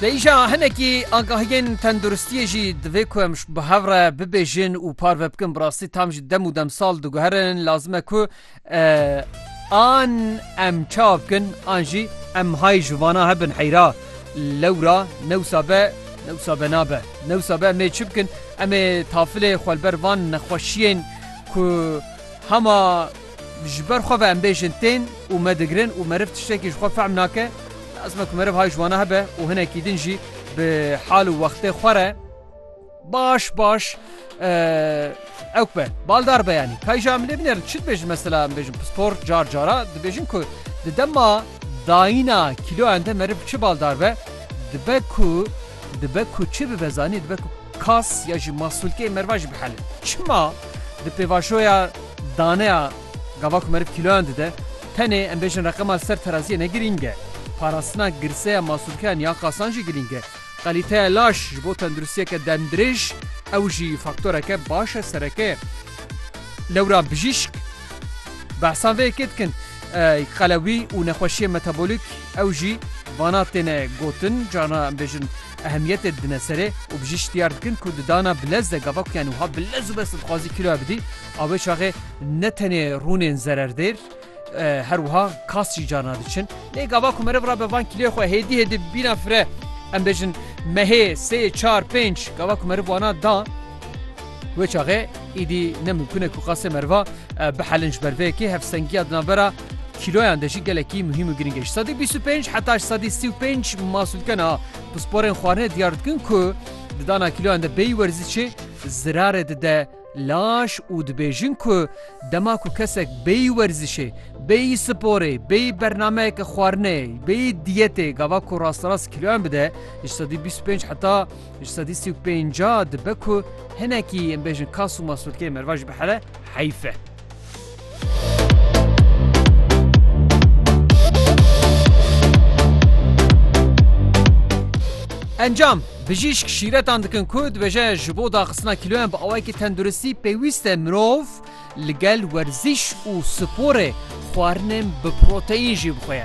Lê îşa hinekî agahiyên tenduristiyê jî divê ku em bi hev re bibêjin û parve bikin. Bi rastî tam jî dem û demsal diguherin lazim e ku an em çawa bikin an jî em hay ji vana hebin heyra lewra newsa be newsa be nabe newsa be em ê çi bikin em ê tafilê xwelber van nexweşiyên ku hema Ji ber xwe ve em bêjin tên û me digirin û meriv tiştekî ji xwe fehm nake, lazim e ku meriv hay ji wana hebe û hinekî din jî bi hal û wextê xwe re baş baş ew be. Baldar beyanî kayja em lê binêrin çi dibêjin mesela em bêjin pispor car cara dibêjin ku di dema dayîna kîloyan de meriv çi baldar be dibe ku dibe ku çi bibe zanî dibe ku Kas ya ji masûlkeyê merva jî bihelin. Çima di pêvajoya daneya gava ku meriv kîloyan dide, tenê em bêjin reqema li ser teraziyê ne girîng e. Parastina girseya masûlkeyan ya kasan jî girîng e. Kalîteya laş ji bo tenduristiyeke demdirêj ew jî faktoreke baş e, sereke ye. Lewra bijîşk behsan vê yekê dikin. Qelewî û nexweşiyên metabolîk ew jî vana têne gotin, carna em bêjin, ehemiyetê didine serê û bi jî şitiyar dikin ku di dana bi lez de gava ku yani wiha bi lez û bes dixwazî kîloya bidî a wê çaxê ne tenê rûnên zererdêr her wiha kas jî carna diçin. Lê gava ku meriv rabe van kîloyê xwe hêdî hêdî bîna fire em bêjin mehê sê çar pênc gava ku meriv wana da wê çaxê îdî ne mimkûne ku qasê meriva bihelin ji ber vê yekê hevsengiya di navbera Kîloyan de jî gelekî muhîm û girîng e. Ji sedî bîst û pênc heta ji sedî sî û pênc masûlkena pisporên xwarinê diyar dikin ku di dana kîloyan de bêyî werzîşê zirarê dide laş û dibêjin ku dema ku kesek bêyî werzîşê, bêyî sporê, bêyî bernameyeke xwarinê, bêyî diyetê gava ku rasterast kîloyan bide ji sedî bîst û pênc heta ji sedî sî û pênca dibe ku hinekî em bêjin kas û masûlkeyê merivajî bihele heyf e. Encam, Bijîşk şîretan dikin ku dibêje ji bo daxistina kîloyan bi awayekî tenduristî pêwîst e mirov li gel werzîş û sporê xwarinên bi proteîn jî bixwe.